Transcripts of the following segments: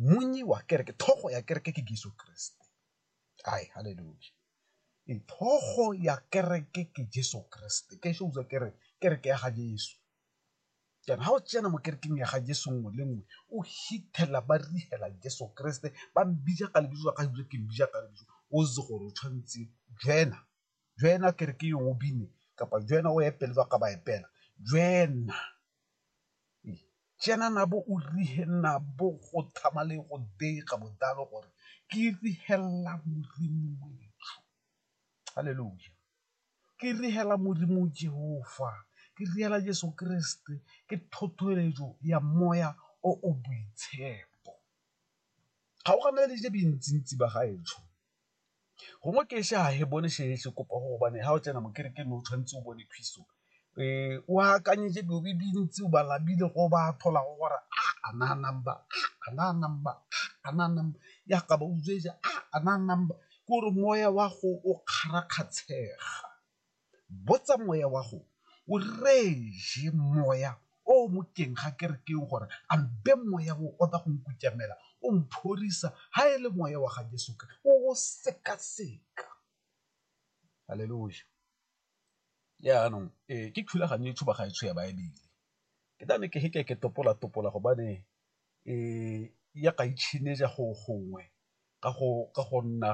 Monnyi wa kereke, thogo ya kereke ke Jeso Keresete, ai haleluya, ee thogo ya kereke ke Jeso Keresete, ke shows a kere kereke ya ga Jeso. Jaanong ga o tsena mo kerekeng ya ga Jeso nngwe le nngwe o fitlhela ba reela Jeso Keresete, ba mmitsa ka lebitso la gagwe, ke mmitsa ka lebitso, o itse gore o tshwanetse, Jeena jwena kereke yo o bine kapa jwena o epele ba ka ba epela jwena jena nabo o rihe nabo go thama le go dega bodalo gore ke rihela modimo wethu halleluja ke rihela modimo jehova ke rihela jesu kreste ke thothoeletso ya moya o o boitshepo ga o gana le je bintsintsi ba gaetsho gongwe ke ise ga e bone se kopa go gobane ga o tsena mo kerekeng o tshwanetse o bone phiso o akanyetse dilo di dintsi o ba labile go ba tlhola go gore a a na number a na number a na number ya ka ba utswetsa a na number ke gore moya wa go o kgarakgatshega. Botsa moya wa go o reje moya o o mo teng ga kerekeng gore a mpe moya o o tla go nkutamela o mphorisa ga e le moya wa ga Jeso o o sekaseka. Haleloja. Jaanong ke thulaganyo e tshuba ga e tsho ya Baebele ke tla ne ke feke ke topola-topola gobane ya ka go gongwe ka go nna.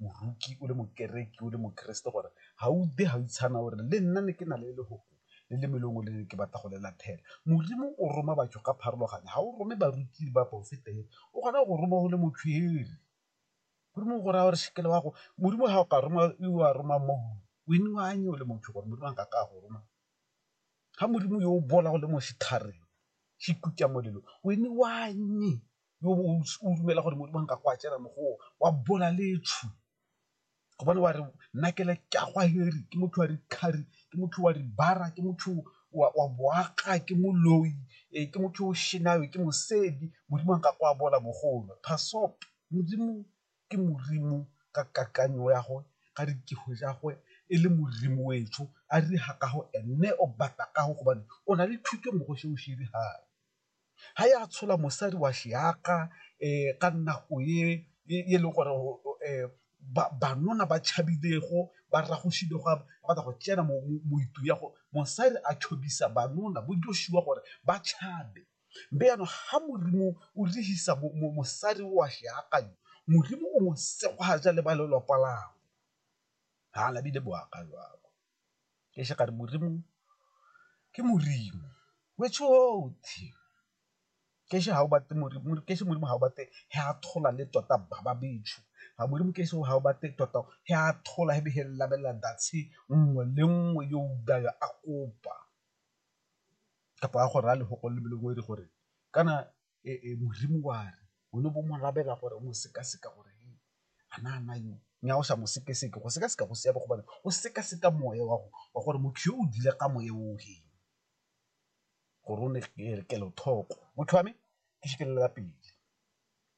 moroki, o le mokereki, o le mokeresete gore ga o utlwe ga o itshana gore le nna ne ke na le lefoko le le melemo le ne ke batla go le latlhela. Modimo o roma batho ka pharologano, ga o rome baruti le baporofeta fela, o kgona go go roma o le motshwere. Modimo o go raya gore sekele wa go, Modimo ga o ka roma o a roma o le motho gore Modimo a nkake a go roma. Ga Modimo yo o bola o le mo setlhareng se ikutlwa molelo, . yo o dumela gore Modimo a nka go a tsena mo go o wa bola letshu gobane wa re nna ke le ke a go heri ke motho wa dikgari ke motho wa dibara ke motho wa boaga ke moloi ee ke motho o shenayo ke mosedi Modimo a nka go a bola bogolo phasop Modimo ke Modimo ka kakanyo ya gagwe ka dikego tsa gagwe e le Modimo wetsho a re ha ka go ene o batla ka go gobane o na le thuto mo go se o se dirang. ga e a tshola mosadi wa ka nako e e leng gore bannona ba tšhabilego ba batla go tsena mo ya go mosadi a bannona bo Joshua gore ba tšhabe, mme jaanong ga Modimo o dirisa mosadi wa Modimo o mo le ba lelapa labo, haa lebile bo aka jwalo. ke še ka re Modimo ke Modimo wetsho otlhe ke še ga o batle Modimo ke še Modimo ga o batle he a thola le tota ba ba betsho ga Modimo ke še ga o batle tota he a thola he be he labelela datshe nngwe le nngwe yo o daya a kopa kapa a go raya lefoko le lengwe le gore kana e, e, modimo wa re o ne bo mo labela gore o mo sekaseka gore a na ana yo nya o sa mo sekeseke go sekaseka go siame gobane o sekaseka moya wa wa gore motho yo o dile ka moya o he gore o ne kelothoko motho wa me ke šikelela pele